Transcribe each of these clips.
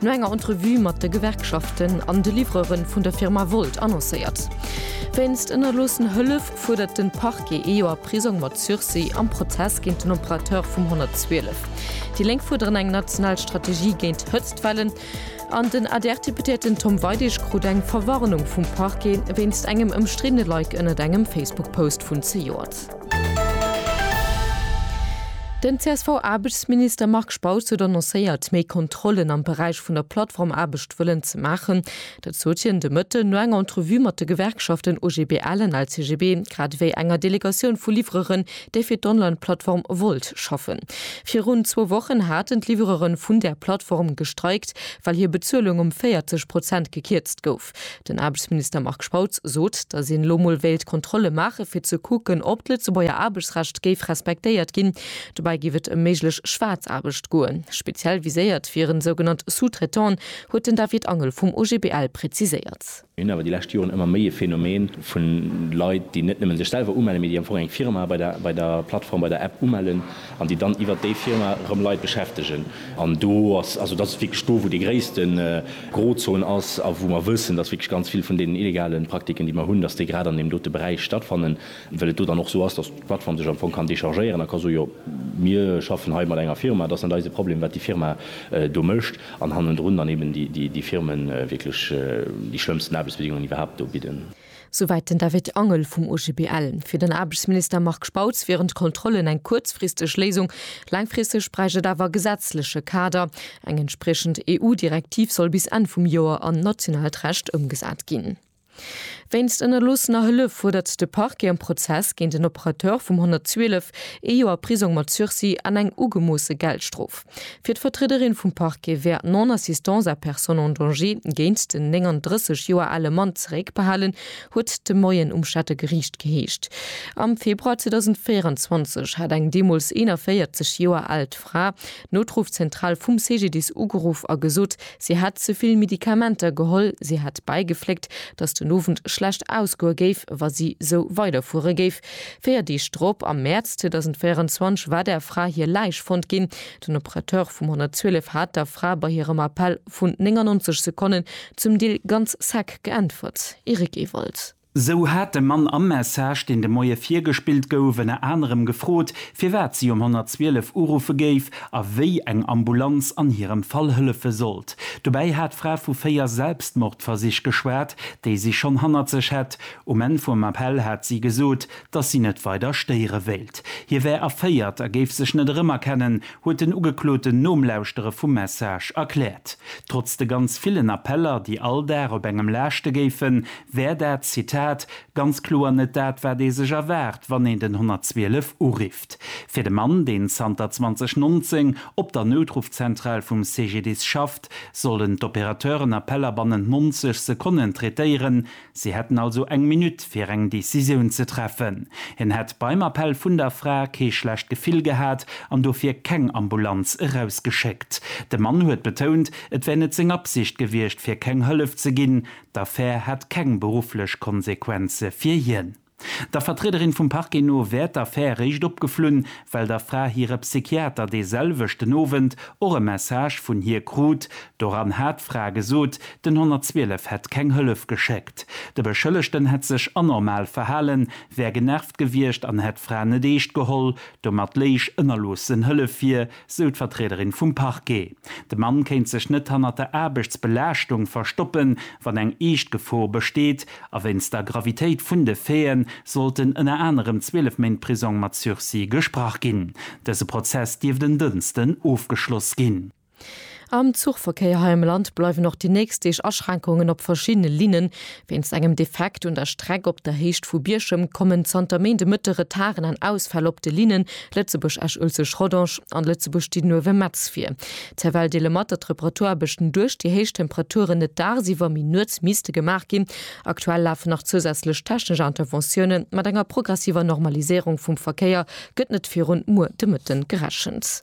No enger Entrevue mat de Gewerkschaften an de Livreuren vun der Firma Wolt annoncéiert. Wéinst ënnerloossen Hëllef fuerdert den Parquet ee Joer Prisong mat Sursis am Prozess géint den Operateur vum 112. Déi Lénk fuerderen eng national Strategie géint Hëtztwellen an den ADR-Deputéierten Tom Weidig krut eng Verwarnung vum Parquet wéinst engem ëmstriddene Like ënnert engem Facebook-Post vun zejoert. Den CSV-Aarbechtsminister Marc Spautz huet annoncéiert, méi Kontrollen am Beräich vun der Plattformaarbecht wëllen ze maachen. Dat sot hien de Mëtten no enger Entrevue mat de Gewerkschaften OGBL an LCGB, grad ewéi enger Delegatioun vu Livreuren, déi fir d'Online-Plattform Wolt schaffen. Virun zwou Wochen haten d'Livreuren vun där Plattform gestreikt, well hir Bezuelung ëm 40 Prozent gekierzt gouf. Den Aarbechtsminister Marc Spautz sot, datt een elo mol wéilt Kontrolle maachen, fir ze kucken, ob d'Lëtzebuerger Aarbechtsrecht géif respektéiert ginn. Dobäi géif et ëm méiglech Schwaarzaarbecht goen. Speziell viséiert wieren sougenannt Sous-traitant'en, huet den David Angel vum OGBL präziséiert. Mir hunn awer déi lescht Joren ëmmer méi e Phänomen vu Leit, déi net nëmmen sech selwer umellen, mee déi am Fong eng Firma bei der Plattform, bei der App umellen an déi dann iwwert déi Firma erëm Leit beschäftegen. An do ass, also dat ass wierklech do, wou dee gréissten, Grozon ass a wou mer wëssen, dass wierklech ganz vill vun deenen illegale Praktiken, déi mer hunn, dass déi grad an deem dote Beräich stattfannen, well et do dann och esou ass, dass d'Plattform sech am Fong kann dechargéieren a ka soen, jo mir schaffen hei mat enger Firma, et ass net eise Problem, wat déi Firma do mécht, an hannendrun dann eben déi Firmen wierklech déi schlëmmsten Aarbechtsbedingungen iwwerhaapt do bidden. Souwäit den David Angel vum OGBL. Fir den Aarbechtsminister Marc Spautz wieren d'Kontrollen eng kuerzfristeg Léisung. Laangfristeg bräicht et awer e gesetzleche Kader. Eng entspriechend EU-Direktiv soll bis Enn vum Joer an nationaalt Recht ëmgesat ginn. Wéinst ënnerloossener Hëllef fuerdert de Parquet am Prozess géint en Operateur vum 112 ee Joer Prisong mat Sursis an eng ugemoosse Geldstrof. Fir d'Vertriederin vum Parquet wär d'Non-assistance à personne en danger géint den 39 Joer ale Mann zeréckbehalen, huet et de Moien um Stater Geriicht geheescht. Am Februar 2024 hat eng deemools 41 Joer aalt Fra d'Noutruffzentral vum CGDIS ugeruff a gesot, si hätt ze vill Medikamenter geholl. Si hätt bäigefléckt, datt den Owend schlecht ausgoe géif, wa si sou weiderfuere géif. Véier Deeg drop, am Mäerz 2024, war der Fra hir Läich fonnt ginn. Den Operateur vum 112 hat der Fra bei hirem Appell vun 99 Sekonnen zum Deel ganz sec geäntwert, Eric Ewald. Sou hat de Mann am Message, deen de Moie virgespillt gouf, ënner anerem gefrot, firwat si um 112 uruffe géif a wéi eng Ambulanz an hirem Fall hëllefe sollt. Dobäi hat d'Fra vu véier Selbstmordversich geschwat, déi si schonn hannert sech hätt. Um Enn vum Appell hat si gesot, datt si net weider stéiere wéilt. Hie wär erféiert a géif sech net erëmerkennen, huet den Ugekloten nom Lauschtere vum Message erkläert. Trotz de ganz villen Appeller, déi all Dag op engem laaschte géifen, wär dat, Zitat, ganz kloer net dat, wat ee sech erwaart, wann een den 112 urifft. Fir de Mann, deen zanter 2019 op der Noutruffzentral vum CGDIS schafft, sollen d'Opérateuren Appeller bannent 90 Sekonnen traitéieren. Si hätten also eng Minutt, fir eng Decisioun ze treffen. Hien hätt beim Appell vun der Fra kee schlecht Gefill gehat an dofir keng Ambulanz erausgeschéckt. De Mann huet betount, et wär net seng Absicht gewiescht, fir keng Hëllef ze ginn. D'Affär hätt keng berufflech Konsequenze fir hien. Der Vertriederin vum Parquet no wär d'Affär réischt opgeflunn, well der Fra hire Psychiater dee selwechten Owend och e Message vun hir krut. Doran hat d'Fra gesot, den 112 hätt keng Hëllef geschéckt. De Beschëllegten hätt sech anormal verhalen, wär genervt gewiescht an hätt d'Fra net eescht geholl. Domat léich ënnerloossen Hëllef vir, sou d'Vertriederin vum Parquet. De Mann kéint sech net hannert der Aarbechtsbelaaschtung verstoppen, wann eng eescht Gefor besteet. A wéinst der Gravitéit vun de Faite sollten ënner anerem 12 Méint Prisong mat Sursis gesprach ginn. Dëse Prozess dierft en Dënsten ofgeschloss ginn. Am Zuchverkéier hei am Land bleiwen och déi nächst Deeg Aschränkungen op verschiddene Linnen. Wéinst engem Defekt un der Streck op der Héicht vu Bierchem kommen zanter Méinde Mëtte Retarden an Ausfäll op de Linnen Lëtzebuerg-Esch-Uelzecht-Rodange an Lëtzebuerg-Didenhoewe-Metz vir. D'CFL deele mat, datt d'Reparaturaarbechten duerch déi héich Temperaturen net dagsiwwer, mee nuets misste gemaach ginn. Aktuell lafen nach zousätzlech technesch Interventiounen. Mat enger progressiver Normaliséierung vum Verkéier gëtt net virun muer de Mëtten gerechent.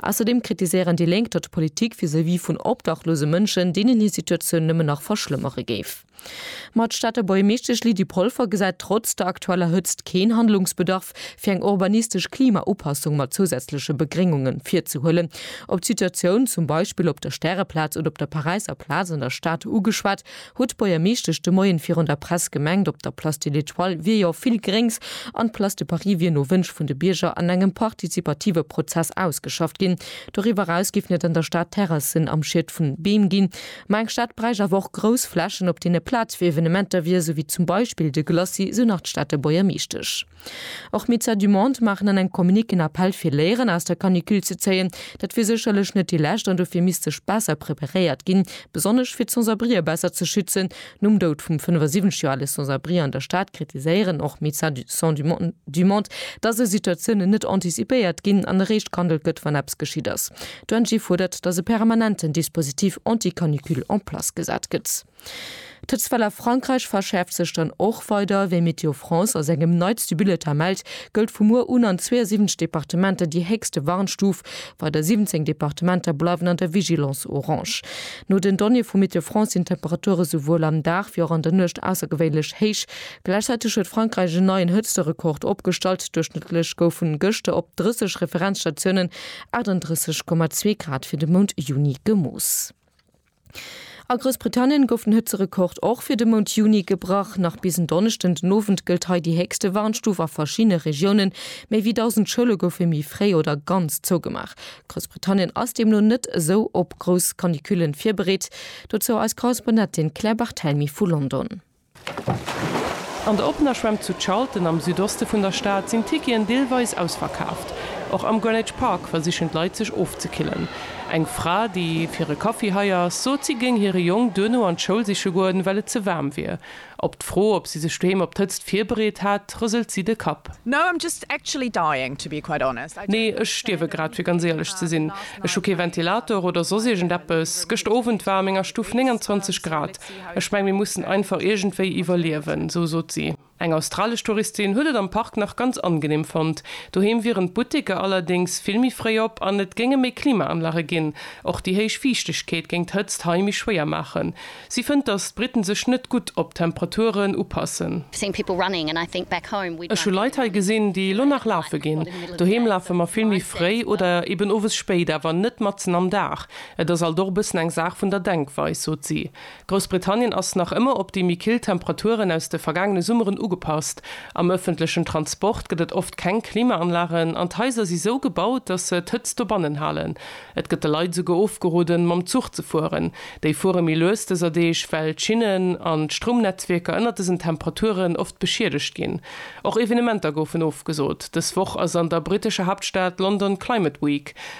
Ausserdeem kritiséieren déi Lénk, datt d'Politik vis-à-vis vun obdachlose Mënschen deenen hir Situatioun nëmmen nach verschlëmmere géif. Ma d'Stater Buergermeeschtesch Lydie Polfer gesäit trotz der aktueller Hëtzt keen Handlungsbedarf, fir eng urbanistesch Klimaupassung mat zousätzleche Begréngunge virzehuelen. Op d'Situatioun zum Beispill op der Stäreplaz oder op der Paräisser Plaz an der Stad ugeschwat, Huet d'Buergermeeschtesch de Moien virun der Press gemengt, op der Place de l'Etoile wier jo vill Gréngs an d'Place de Paris wier no Wënsch vun de Bierger an engem partizipative Prozess ausgeschafft ginn. Doriwwer eraus géifen et an der Stad Terrassen am Schied vun Beem ginn. Ma eng Stad bräicht awer och grouss Flächen, op deene Plaz fir Evenementer wier, esou wéi zum Beispill de Glacis, esou nach d'Stater Buergermeeschtesch. Och Médecins du Monde maachen an engem Communiqué en Appell fir Léieren aus der Canicule ze zéien. Dat wier sécherlech net déi lescht an dofir misst sech besser preparéiert ginn, besonnesch fir d'Sans-abrien besser ze schützen. Nom Doud vum 75 Joer ale Sans-abri an der Stad kritiséieren och Médecins du Monde, datt esou Situatiounen net anticipéiert ginn an eréischt gehandelt gëtt, wann eppes geschitt ass. D'ONG fuerdert, datt e permanenten Dispositif anti-canicule en place gesat gëtt. D'Hëtztwell a Frankräich verschäerft sech dann och weider. Wéi Météo France a sengem neitste Bulletin mellt, gëllt vu muer un an 72 Departementer déi héchste Warnstuf. Weider 17 Departementer bleiwen an der Vigilance orange. No den Donnéeë vu Météo France sinn d'Temperature souwuel am Dag wéi och an der Nuecht aussergewéinlech héich. Gläichzäiteg huet Frankräich en neien Hëtzterekord opgestallt, Duerchschnëttlech goufen gëschter op 30 Referenzstatiounen 38,2 Grad fir de Mount Juni gemooss. A Groussbritannien gouf den Hëtzerekord och fir de Mount Juni gebrach. Nach bis en Donneschden den Owend gëllt hei déi héchste Warnstuf a verschiddene Regiounen. Méi wéi 1.000 Schoule goufe méi fréi oder ganz zougemaach. Groussbritannien ass deemno net esou op grouss Canicule virbereet. Dozou eis Korrespondentin Claire Barthelmy vu London. An der oppener Schwämm zu Charlton am Südoste vun der Stad sinn d'Ticketen deelweis ausverkaaft. Och am Greenwich Park versichen d'Leit sech ofzekillen. Eng Fra, déi fir e Kaffi hei ass, sot si géing hire Jong duerno an d'Schoul siche goen, well et ze waarm wier. Op d'Fro, ob si sech doheem op d'Hëtzt virbereet hat, rëselt si de Kapp. Nee, ech stierwe grad, fir ganz éierlech ze sinn. Ech hu kee Ventilator oder soss iergend eppes. Gëschter Owend war a menger Stuff 29 Grad. Ech meng, mir mussen einfach iergendwéi iwwerliewen, esou sot si. Eng australesch Touristin huet et am Park nach ganz angeneem fonnt. Doheem wieren d'Butteker allerdéngs vill méi fréi op an et géinge méi Klimaanlage ginn. Och déi héich Fiichtegkeet géing d'Hëtzt hei méi schwéier maachen. Si fënnt, datt d'Britten sech net gutt op d'Temperaturen upassen. Ech hu Leit hei gesinn, déi elo nach lafe ginn. Doheem lafe mer vill méi fréi oder eben owes spéit, awer net matzen am Dag. Et ass alt och e bëssen eng Saach vun der Denkweis, sot si. Groussbritannien ass nach ëmmer op déi méi kill Temperaturen aus de vergaangene Summeren ugepasst. Am ëffentlechen Transport gëtt et oft keng Klimaanlagen an d'Haiser si sou gebaut, datt se d'Hëtzt dobannen halen. Et gëtt de Leit esouguer ofgeroden, mam Zuch ze fueren. Déi fuere méi lues dëser Deeg, well d'Schinnen an d'Stroumnetzwierker ënnert dësen Temperaturen oft beschiedegt ginn. Och Evenementer goufen ofgesot. Dës Woch ass an der brittescher Haaptstad London Climate Week.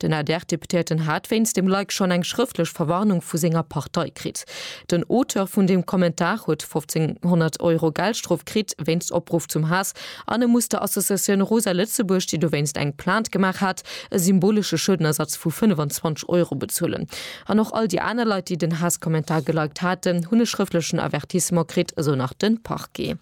Den ADR-Deputéierten hat wéinst dem Like schonn eng schrëftlech Verwarnung vu senger Partei kritt. Den Auteur vun dem Kommentar huet 1500 Euro Geldstrof kritt wéinst Opruff zum Haass an e muss der Associatioun Rosa Lëtzebuerg, déi dowéinst eng Plainte gemaach hat, e symbolesche Schuedenersatz vu 25 Euro bezuelen. An och all déi aner Leit, déi den Haasskommentar geliked haten, hunn e schrëftlechen Avertissement kritt, esou nach de Parquet.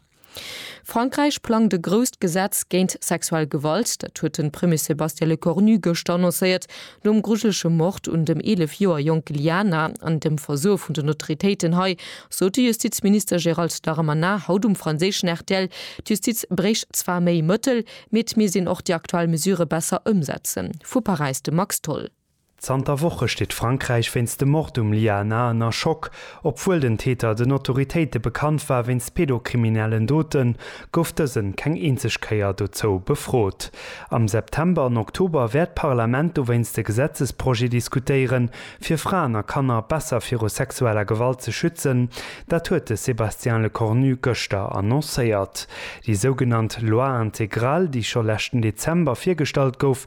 Frankräich plangt e grousst Gesetz géint sexuell Gewalt. Dat huet de Premier Sébastien Lecornu gëschter annoncéiert, nom grujelege Mord un dem 11 Joer jonke Liana an dem Versoe vun den Autoritéiten hei, sot de Justizminister Gérald Darmanin haut um franséischen rtl. D'Justiz bréicht zwar méi Mëttel, mee et misst een och déi aktuell Mesure besser ëmsetzen. Vu Paräis de Max Tholl. Zanter Woche steet Frankräich wéinst dem Mord um Lia Na ënner Schock. Obwuel den Täter den Autoritéite bekannt war wéinst pedokriminellen Doten, gouf dësen keng eenzeg Kéier dozou befrot. Am September an Oktober wäert d'Parlament dowéinst e Gesetzesprojet diskutéieren, fir Fraen a Kanner besser viru sexueller Gewalt ze schützen. Dat huet de Sébastien Lecornu gëschter annoncéiert. Déi sougenannt Loi intégrale, déi scho leschten Dezember virgestallt gouf,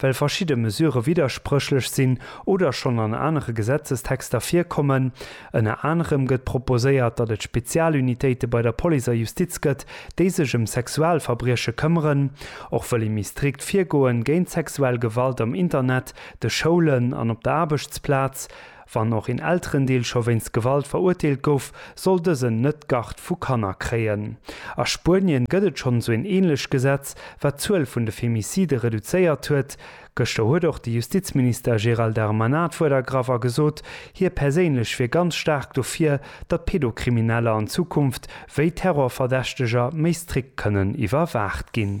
Well verschidde Mesure widderspréchlech sinn oder schonn an anere Gesetzestexter virkommen. Ënner anerem gëtt proposéiert, datt et Spezialunitéite bei der Police a Justiz gëtt, déi sech ëm Sexualverbrieche këmmeren. Och wëll ee méi strikt virgoen géint sexuell Gewalt am Internet, de Schoulen an op der Aarbechtsplaz. Wann och een Elterendeel scho wéinst Gewalt verurteelt gouf, soll dësen net d'Garde vu Kanner kréien. A Spuenien gëtt et schonn esou een änlech Gesetz, wat d'Zuel vun de Femicide reduzéiert huet. Gëschter huet och de Justizminister Gérald Darmanin d'Wuert ergraff a gesot, hie perséinlech wier ganz staark dofir, datt Pedokrimineller an Zukunft wéi Terrorverdächteger méi strikt kënnen iwwerwaacht ginn.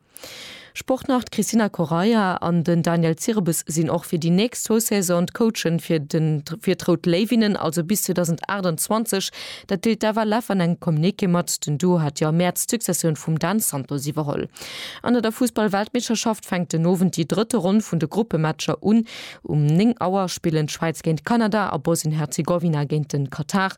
Sportnarr d'Cristina Correia an den Daniel Zirebes sinn och fir déi nächst zwou Saison d'Coachen fir fir d'Rout Léiwinnen, also bis 2028. Dat deelt d'Eva Leff an engem Communiqué mat. Den Duo hat jo am Mäerz d'Successioun vum Dan Santos iwwerholl. An der der Fussball-Weltmeeschterschaft fänkt den Owend déi drëtte Ronn vun de Gruppematcher un. Um 9 Auer spillen d'Schwäiz géint Kanada a Bosnien-Herzegowina géint de Katar.